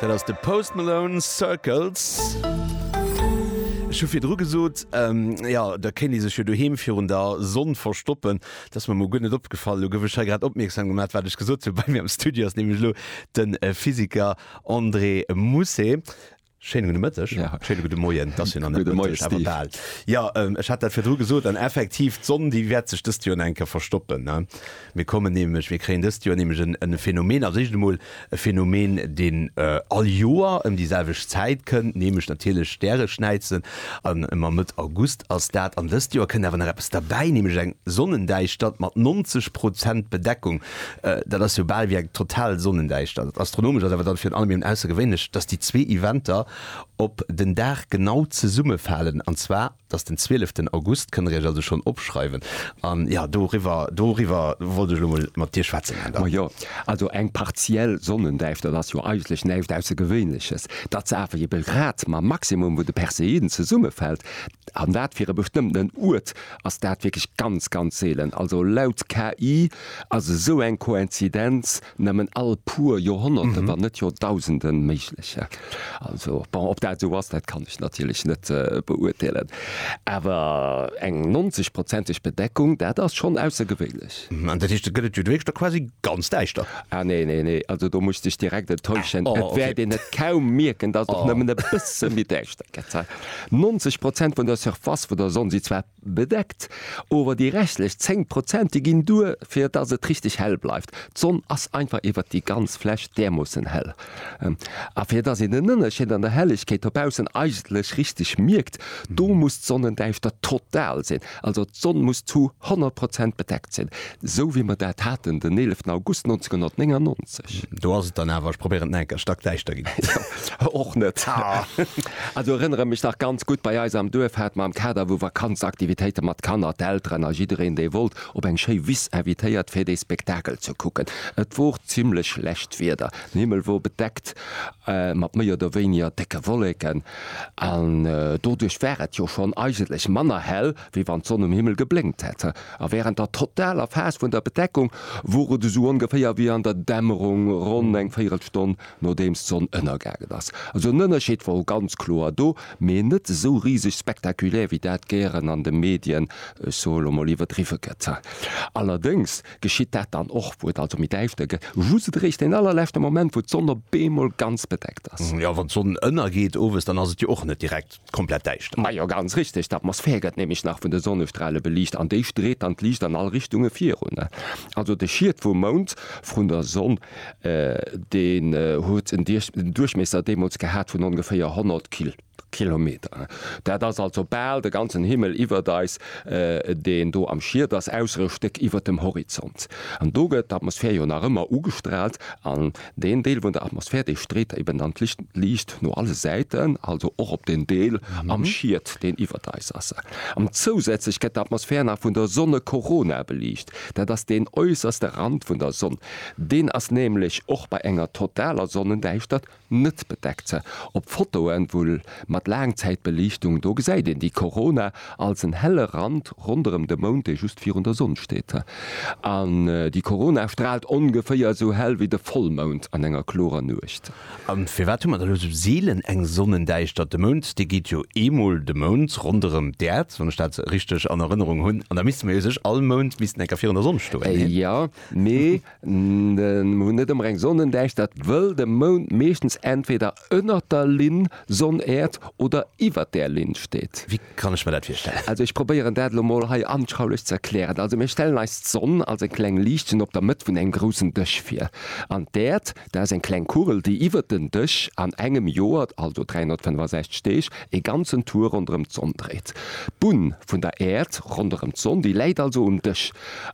Dat ass de Post Malone, Circles. Ech hu virdru gesot, jo, da kéint ee sech jo doheem virun der Sonn verstoppen. Dat ass mer mol guer net opgefall. Elo gouf ech hei grad opmierksam gemat, wat ech gesot hunn. Bei mir am Studio ass nämlech elo de Physiker André Mousset. Schéine gudde Mëtteg, schéine gudde Moien, et ass jo nach net Mëtteg, awer bal. Jo, ech hat dat virdru gesot, an effektiv, d'Sonn, déi wäert sech dëst Joer nach eng Kéier verstoppen. Mir kommen nämlech, mir kréien dëst Joer nämlech e Phänomen, als éischt emol e Phänomen, deen all Joer ëm déi selwecht Zäit kënnt, nämlech natierlech Stäreschnäizen, an ëmmer Mëtt August ass dat. An dëst Joer kënnt awer nach eppes derbäi, nämlech eng Sonnendäischtert mat 90 Prozent Bedeckung, Dat ass jo bal wéi eng total Sonnendäischtert. Astronomesch ass awer dann virun allem eben aussergewéinlech, dass déi zwee Eventer op den Dag genau zesummefalen, an zwar dass den 12 August. Kënnt Der Iech also schonn opschreiwen. An jo, doriwwer, doriwwer wollt ech elo mol mat Dir schwätzen, Här Daum. Majo, also eng partiell Sonnendäischtert ass jo eigentlech näischt Aussergewéinleches. Datt se awer eben grad mam Maximum vun de Perseiden zesummefält, an dat fir e bestëmmtenen Uert, ass dat wierklech ganz ganz seelen. Also laut KI ass esou eng Koinzidenz nëmmen all puer Joerhonnerten, wann net Joerdausenden méiglech. Also bon, ob dat esou ass, dat kann ech natierlech net beurteelen, awer eng 90 prozenteg Bedeckung, dat ass schonn aussergewéinlech. An dat heescht, et gëtt et jo duerchst da quasi ganz däischter? Ah nee, nee, nee, also do muss ech dech direkt enttäuschen. Et wäert een et kaum mierken, datt et och nëmmen e bësse méi däischter gëtt. 90 Prozent vun der Surface vun der Sonn si zwar bedeckt, ower déi restlech 10 Prozent, déi ginn duer, fir dass et richteg hell bleift. D'Sonn ass einfach iwwert déi ganz Fläch därmoossen hell. A fir dass een den Ënnerscheed an der Hellegkeet dobaussen eigentlech richteg mierkt, do muss d'Sonnendäischtert total sinn. Also d'Sonn muss zu 100 Prozent bedeckt sinn, esou wéi mer dat haten den 11 August 1999. Do ass et dann awer, ech probéieren et nach eng Kéier, stackdäischter ginn. Och net. Also erënnere mech nach ganz gutt, bei eis am Duerf hat mer am Kader vu Vakanzaktivitéite mat Kanner d'Elteren a jiddereen dee wollt op eng schéi Wiss invitéiert fir dee Spektakel ze kucken. Et wor zimlech schlecht Wieder, den Himmel wor bedeckt mat méi oder wéiniger décke Wolleken. An doduerch war et jo schonn eigentlech manner hell, wéi wann d'Sonn um Himmel geblénkt hätt. A wärend der totaler Phas vun der Bedeckung wor et esou ongeféier wéi an der Dämmerung, ronn eng Véierelstonn nodeems d'Sonn ënnergaangen ass. Also en Ënnerscheed wor ganz kloer do, mee net esou riseg spektakulär, wéi dat gären an de Medien, ech soe lo mol, iwwerdriwwe gëtt. Allerdéngs Geschitt dat dann och, wou et also méi däischter gëtt, just eréischt deen allerleschte Moment, wou d'Sonn op eemol ganz bedeckt ass? Jo, wann d'Sonn ënnergeet owes, dann ass et jo och net direkt komplett däischter. Majo, ganz richteg. D'Atmosphär gëtt nämlech nach vun de Sonnestrale beliicht an déi street dann d'Liicht an all Richtunge virun. Also de Schiet vum Mound vrun der Sonn, deen huet en Duerchmiesser deemools gehat vun ongeféier 100 kil. Kilometer. Dat ass also bal de ganzen Himmel iwwert eis, deen do am Schiet ass, ausser e Stéck iwwert dem Horizont. An do gëtt d'Atmosphär jo nach ëmmer ugestraalt, an deen Deel vun der Atmosphär, dee street eben dann d'Licht liicht no alle Säiten, also och op den Deel am Schiet, deen iwwert eis ass. An zousätzlech gëtt d'Atmosphär nach vun der Sonnekorona beliicht. Dat ass deen äusserste Rand vun der Sonn. Deen ass nämlech och bei enger totaler Sonnendäischtert Net bedeckt ze. Op Fotoen wouhl mat Laangzäitbeliichtung, do gesäit een déi Korona als en helle Rand ronderem de Mound, dee just virun der Sonn steet. An déi Korona strahlt ongeféier esou hell wéi de Vollmound an enger klorer Nuecht. An firwat hu mer da lo esou seelen eng Sonnendäischtert? De Mound, dee geet jo eemol de Mound ronderem d'Äerd, wann ech dat richteg an Erënnerung hunn. An da misste mer jo sech all Mound missten enker virun der Sonn stoen, nee? Jo, mee Mir hunn net ëmmer eng Sonnendäischtert, wëll de Mound meeschtens entweder ënnert der Linn Sonn-Äerd oder iwwert där Linn steet. Wéi kann ech mer dat virstellen? Also ech probéieren dat elo mol hei anschaulich ze erklären. Also mir stellen eis d'Sonn als eng kleng Liichtchen op der Mëtt vun engem groussen Dësch vir. An d'Äerd, dat ass eng kleng Kugel, déi iwwert den Dësch an engem Joer, also 365 Deeg, ee ganzen Tour ronderëm d'Sonn dréit. D'Bunn vun der Äerd ronderëm d'Sonn, déi läit also um Dësch.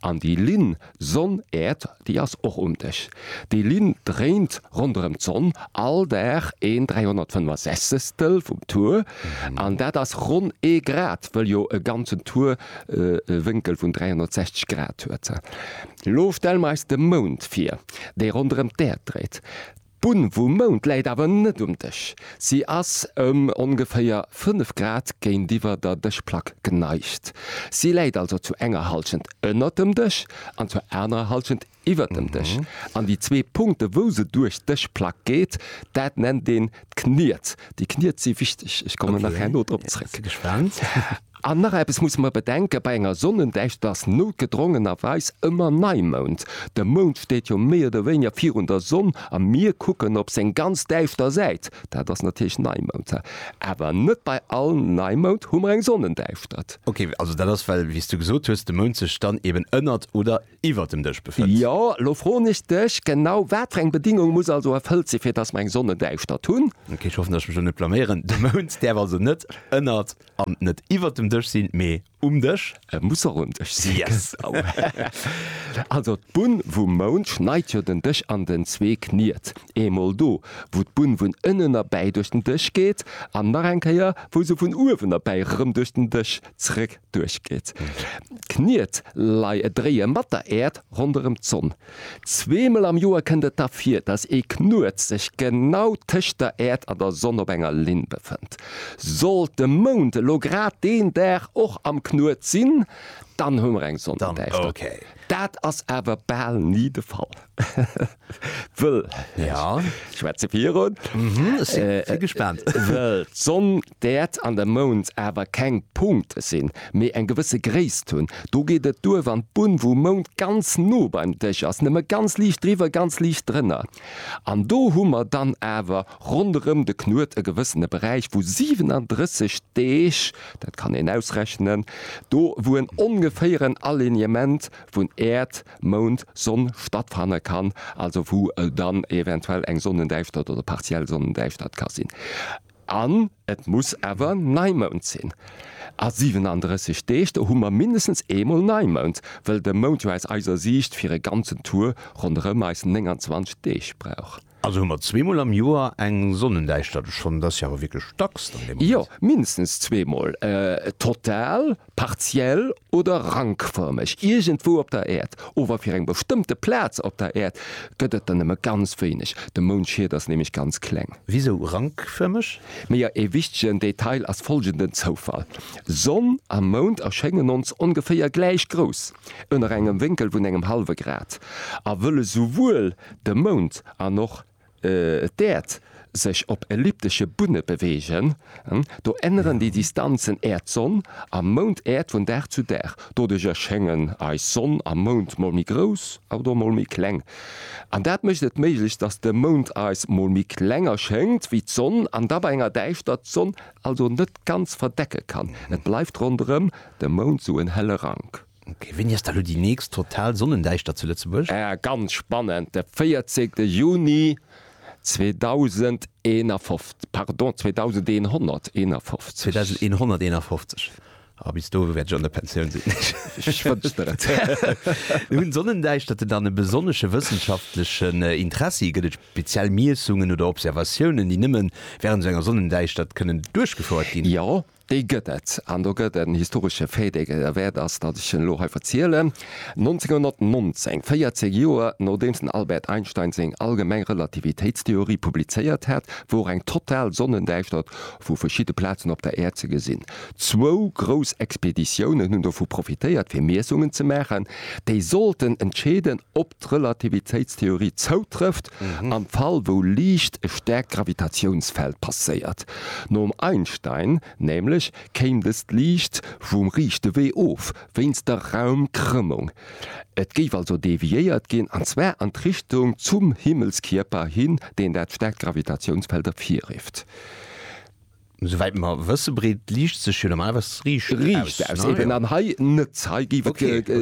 An déi Linn Sonn, Äerd, déi ass och um Dech. Déi Linn dréint ronderëm d'Sonn all Dag een 365stel vum Tour, an dat ass ronn ee Grad, wëll jo e ganzen Tour e Wénkel vun 360 Grad huet. Elo stelle mer eis de Mound vir, dee ronderëm d'Äerd dréit. D'Bunn vum Mound läit awer net um Dësch. Si ass ëm ongeféier 5 Grad géintiwwer der Dëschplack geneigt. Si läit also zu enger Hallschent ënnert dem Dësch an zur anerer Hallschent iwwer dem Dësch. An déi zwee Punkte wou se duerch d'Dëschplack geet, dat nennt een d'Kniet. Déi Kniet si wichteg, ech kommen nach herno drop zréck. An nach eppes musse mer bedenken, Bei enger Sonnendächt ass noutgedrongenerweis ëmmer Neimound. De Mound steet jo méi oder wéineger virun der Sonn a mir kucken op seng ganz däischter Säit. Dat ass natierlech Neimound. Awer net bei all Neimound hu mer eng Sonnendäischtert. Ok, also dat ass well, wéi s du gesot hues, de Mound sech dann eeben ënnert oder iwwert dem Dësch befënnt. Jo, elo froen ech dech, Genau wat fir eng Bedingung muss also erfëllt sinn, fir datt mer eng Sonnendäischtert hunn? Ok, ech hoffen, datt ech mech elo net blaméieren. De Mound däerf also net ënnert. An net iwwert dem Dësch sinn, mee um Dësch. E muss och um Dësch sinn. Yes! Also d'Bunn vum Mound schneit jo den Dësch an den zwee Kniet. Eemol do, wou d'Bunn vun ënnen erbäi duerch den Dësch geet, an nach eng Kéier, wou se vun uewen erbäi erëm duerch den Dësch zréck duerchgeet. D'Kniet leie, dréie mat der Äerd ronderëm d'Sonn. Zweemol am Joer kënnt et da vir, dass ee Knuet sech genau tëscht der Äerd an der Sonn op enger Linn befënnt. Sollt de Mound elo grad deen Dag och am Knuet sinn, dann hu mer eng Sonnendäischtert. Dat ass awer bal ni de Fall, wëll d'Sonn D'Äerd an de Mound awer keng Punkte sinn, mee eng gewësse Gréisst hunn. Do geet et duer, wann d'Bunn vum Mound ganz no beim Dësch ass, nëmme ganz liicht driwwer, ganz liicht drënner. An do hu mer dann awer ronderëm de Knuet e gewëssene Beräich vu 37 Deeg, dat kann een ausrechnen, do wou en ongeféieren Alignement vun Äerd, Mound, Sonn stattfanne kann, also wou dann eventuell eng Sonnendäischtert oder partiell Sonnendäischtert ka sinn. An et muss awer Neimound sinn. A 37 Deeg, do hu mer mindestens eemol Neimound, wëll de Mound jo aus eiser Siicht fir e ganzen Tour ronderëm eis 29 Deeg brauch. Also hu mer zweemol am Joer eng Sonnendäischtert. Schonn, dat ass jo awer wierklech dacks dann dee Moment. Jo, mindestens zweemol total. Partiell oder rankfërmeg iergendwou op der Äerd, ower fir eng bestëmmte Plaz op der Äerd gëtt et der nëmme ganz wéineg, de Moundschiet ass nämlech ganz kleng. Wisou rankfërmeg? Mee jo, ee wichtegen Detail ass folgenden Zoufall, Sonn a Mound erschéngen ons ongeféier gläich grouss, ënner engem Wénkel vun engem hallwe Grad, a wëll esouwuel de Mound an och Et d'Äerd sech op elliptesche Bunne beweegen. Do änneren déi Distanzen Äerd-Sonn a Mound-Äerd vun Dag zu Dag. Doduercher schéngen eis Sonn a Mound mol méi grouss a oder mol méi kleng. An dat mécht et méiglech, dass de Mound eis mol méi kleng erschéngt wéi d'Sonn an da bei enger Däischtert d'Sonn also net ganz verdecke kann. Et bleift ronderëm de Mound sou en helle Rank. Ok, wéini ass da lo déi nächst total Sonnendäischtert zu Lëtzebuerg? Ah, ganz spannend, de 14 Juni 2051, pardon, 2151. 2151, ah, bis do wäert ech an der Pensioun sinn. Ech wënsch der et. Hunn Sonnendäischterte dann e besonnesche wëssenschaftlechen Interessi? Gëtt et speziell Miessungen oder Observatiounen, déi nëmme wärend esou enger Sonnendäischtert kënnen duerchgefouert ginn? Jo, Déi gëtt et, an do gëtt en historesche Fait, dee et wäert ass, datt ech en elo hei verzielen. 1919, 14 Joer nodeems den Albert Einstein seng allgemeng Relativitéitstheorie publizéiert hat, wor eng total Sonnendäischtert vu verschidde Plazen op der Äerd ze gesinn. Zwou grouss Expeditiounen hunn dovu profitéiert, fir Miessungen ze maachen, déi sollten entscheeden, ob d'Relativitéitstheorie zoutrëfft am Fall wou Liicht e stäerkt Gravitatiounsfeld passéiert. Nom Einstein nämlech kéim dëst Liicht vum riichte Wee of, wéinst der Raumkrëmmung. Et géif also deviéiert ginn, an zwar an d'Richtung zum Himmelskierper hin, deen dat stäerkt Gravitatiounsfeld ervirifft. Souwäit mer wësse breet d'Liicht sech jo normalerweis riicht aus. Riicht aus, eben. An hei net. Hei géif et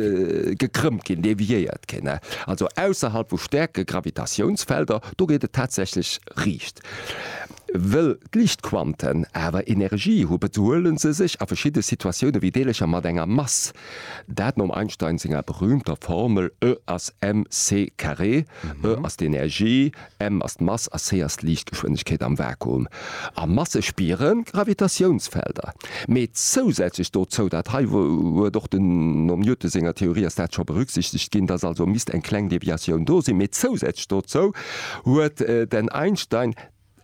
gekrëmmt ginn, deviéiert ginn. Also ausserhalb vu stäerke Gravitatiounsfelder, do geet et tatsächlech riicht. Wëll d'Liichtquanten awer Energie hu bezuelen se sech a verschidde Situatioune wéi Deelercher mat enger Mass. Dat nom Einstein senger berüümter Formel E ass mc carré, E ass d'Energie, M ass d'Mass a C ass d'Liichtgeschwindegkeet am Vakuum. A Masse spiere Gravitatiounsfelder. Mee zousätzlech dozou, dat hei huet och den, nom Newton senger Theorie ass dat scho berücksichtegt ginn, dass also misst eng kleng Deviatioun do sinn, mee zousätzlech dozou huet den Einstein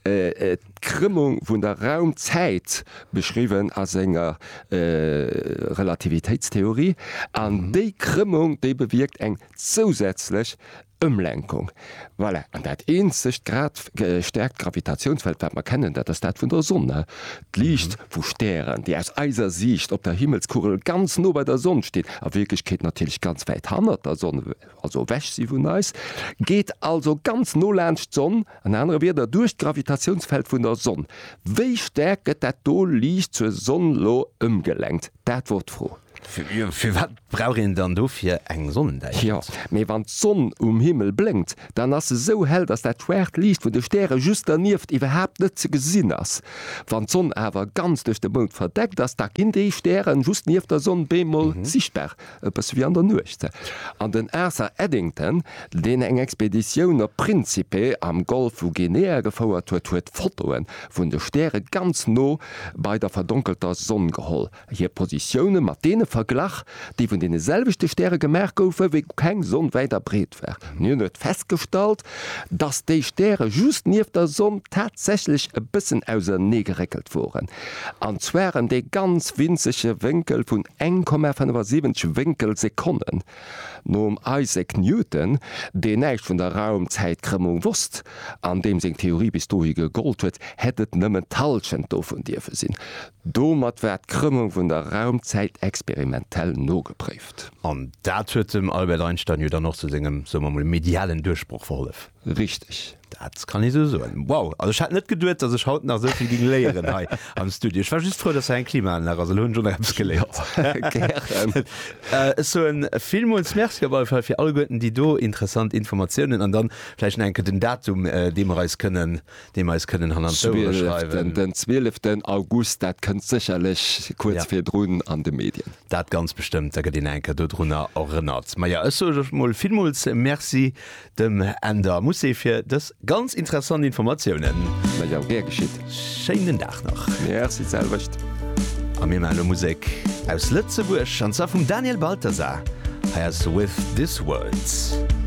d'Krëmmung vun der Raumzäit beschriwwen a senger Relativitéitstheorie. An déi Krëmmung, déi bewierkt eng zousätzlech Ëmlenkung, voilà. An dat eenzegt grad gestäerkt Gravitatiounsfeld, wat mer kennen, dat ass dat vun der Sonn. D'Liicht vu Stären, déi aus eiser Siicht op der Himmelskugel ganz no bei der Sonn stinn, a Wierklechkeet natierlech ganz wäit hannert der Sonn, also ewech si vun eis, geet also ganz no laanscht d'Sonn, an anere Wierder, duerch d'Gravitatiounsfeld vun der Sonn. Wéi stäerk gëtt dat do Liicht zur Sonn lo ëmgelenkt? Dat wor d'Fro. Firwat brauch een dann dofir eng Sonnendäichelt? Jo, mee wann d'Sonn um Himmel blénkt, dann ass se sou hell, dass dat schwaart Liicht vun de Stäre just dernieft iwwerhaapt net ze gesinn ass. Wann d'Sonn awer ganz duerch de Mound verdeckt ass, da ginn déi Stären just nieft der Sonn beemol sichtbar, e bësse wéi an der Nuecht. An den Arthur Eddington, deen eng Expeditioun op Principe am Golf vu Guinea gefouert huet, huet Fotoe vun de Stäre ganz no bei der verdonkelter Sonn geholl. Hir Positioune mat deene verglach, déi vun deene selwechte Stäre gemaach goufe wéi keng Sonn wäit a breet war. Hien huet festgestallt, datt déi Stäre just nieft der Sonn tatsächlech e bëssen auserneegeréckelt woren, an zwar ëm dee ganz winzege Wénkel vun 1,75 Wénkelsekonnen. Nom Isaac Newton, deen näischt vun der Raum-Zäit-Krëmmung wosst an deem seng Theorie bis dohi gegollt huet, hätt et nëmmen d'Hallschent dovun dierfe sinn. Domat war d'Krëmmung vun der Raumzäit experimentell nogepréift. An dat huet dem Albert Einstein jo dann och zu sengem, soe mer mol, medialen Duerchbroch verhollef. Richteg. Dat kann ee sou soen. Wow, also ech hat net geduet, dass ech haut nach sou vill ging léieren hei am Studio. Ech war just frou, dass hei eng Klimaanlag ass, elo hunn ech och nach eppes geléiert. Gären. Ech soen villmools Merci op alle Fall fir alleguerten déi do interessant Informatiounen. An dann vläicht nach eng Kéier den Datum, dee mer eis kënnen. deem eis kënnen hanner d'Ouere schreiwen. Den 12 August, dat kënnt sécherlech kuerz virdrun an de Medien. Dat ganz bestëmmt, da gëtt een eng Kéier dodrunner erënnert. Maja, ech soe lech mol villmools Merci dem Änder Moussé fir dës ganz interessant Informatiounen. Maja, gär geschitt. Schéinen Dag nach. Merci, d'selwecht. A mir maache lo Musek aus Lëtzebuerg, an zwar vum Daniel Balthasar. Hei ass With This World.